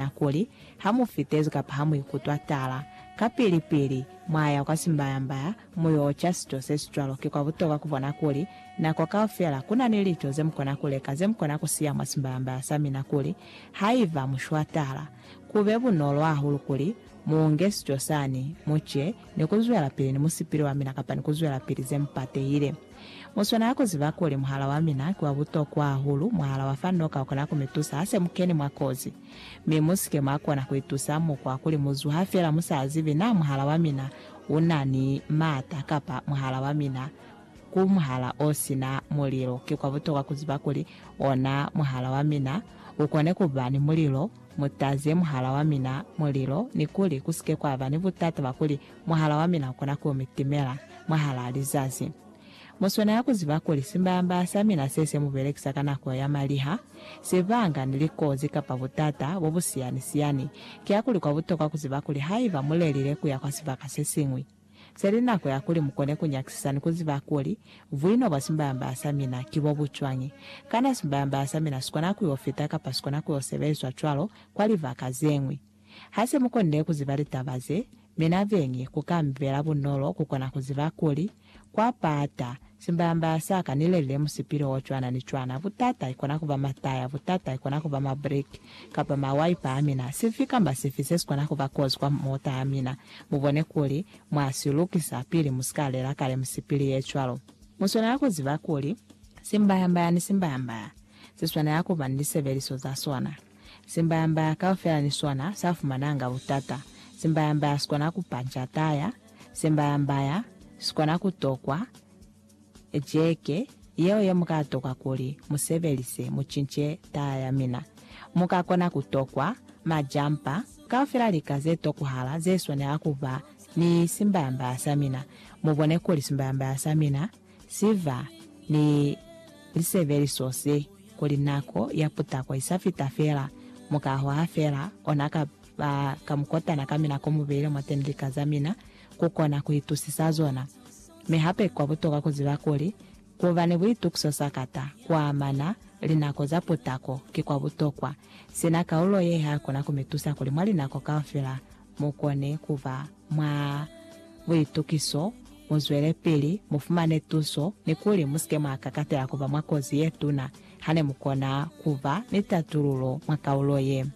Nahana kuli, ha mu fitezi kapa ha mu ikutwa tala, kapili-pili mwa ya kwa simbayambaya mu yo ca sico se si cwalo. Ki kwa butokwa ku bona kuli, nako kaufela, ku na ni lico ze mu kona ku leka, ze mu kona ku siya mwa simbayambaya sa mina kuli, haiba mu shwa tala, ku be bunolo hahulu kuli mu unge sico sani, mu ce, ni ku zwelapili ni musipili wa mina kapa ni ku zwelapili ze mu patehile. Mu swanela ku ziba kuli muhala wa mina ki wa butokwa hahulu, muhala wa fa noka ukona ku mi tusa ha se mu keni mwa kozi. Mi mu si ke mwa kona ku itusa mukwa kuli mu zuha fela mu sa zibi naa muhala wa mina u na ni maata kapa muhala wa mina ku muhala o si na mulilo. Ki kwa butokwa ku ziba kuli ona muhala wa mina u kone ku ba ni mulilo. Mu taze muhala wa mina mulilo ni kuli ku si ke kwa ba ni butata bwa kuli mwahal'a wa mina u kona ku mi timela mwahal'a lizazi. Mu swanela ku ziba kuli simbaya-mbaya sa mina se se mu belekisa ka nako ya maliha, sibanga, ni likozi kapa butata bo bu siyani-siyani. Kiakuli kwa butokwa ku ziba kuli haiba mu lelile ku ya kwa sibaka se siñwi, se li nako ya kuli mu kone ku nyakisisa ni ku ziba kuli buino bwa simbaya-mbaya sa mina ki bo bu cwañi. Kana simbaya-mbaya sa mina si kona ku yo fita kapa si kona ku yo sebelizwa cwalo kwa libaka ze ñwi? Ha se mu konile ku ziba litaba ze, mi na beñi ku ka mi bela bunolo ku kona ku ziba kuli, kwa pata, simbayambaya sa ka ni lelile musipili o cwana ni cwana, butata i kona ku ba mataya, butata i kona ku ba mabriki, kapa mawaipa a mina, sifi kamba sifi se si kona ku ba kozi kwa mota ya mina, mu bone kuli mwa si lukisa pili mu si ka lela kale misipili ye cwalo. Mu swanela ku ziba kuli, simbayambaya ni simbayambaya, si swanela ku ba ni lisebeliso za sona. Simbaya-mbaya kaufela ni sona sa fumananga butata. Simbaya-mbaya si kona ku panja taya. Simbaya-mbaya si kona ku tokwa jeke yeo ye mu ka tokwa kuli mu sebelise mu cince taya ya mina. Mu ka kona ku tokwa majampa kaufela lika ze tokuhala ze swanela ku ba ni simbaya-mbaya sa mina. Mu bone kuli simbaya-mbaya sa mina Ziba ni lisebeliso se, kuli nako ya putako i sa fita fela, mukaho ha fela, ona ka ba ka mukotana ka mina ko mu beile mwateni lika za mina, ku kona ku itusisa zona. Mi hape kwa butokwa ku ziba kuli, ku ba ni buitukiso sakata ku amana linako za putako ki kwa butokwa. Sina kaulo ye, ha kuna ku mi tusa kuli mwa linako kaufela mukone kuba mwa buitukiso, muzwelepili, mufumane tuso, ni kuli musike mwa kakatela kuba mwa kozi yetuna hane mukona kuba ni tatululo mwa kaulo ye.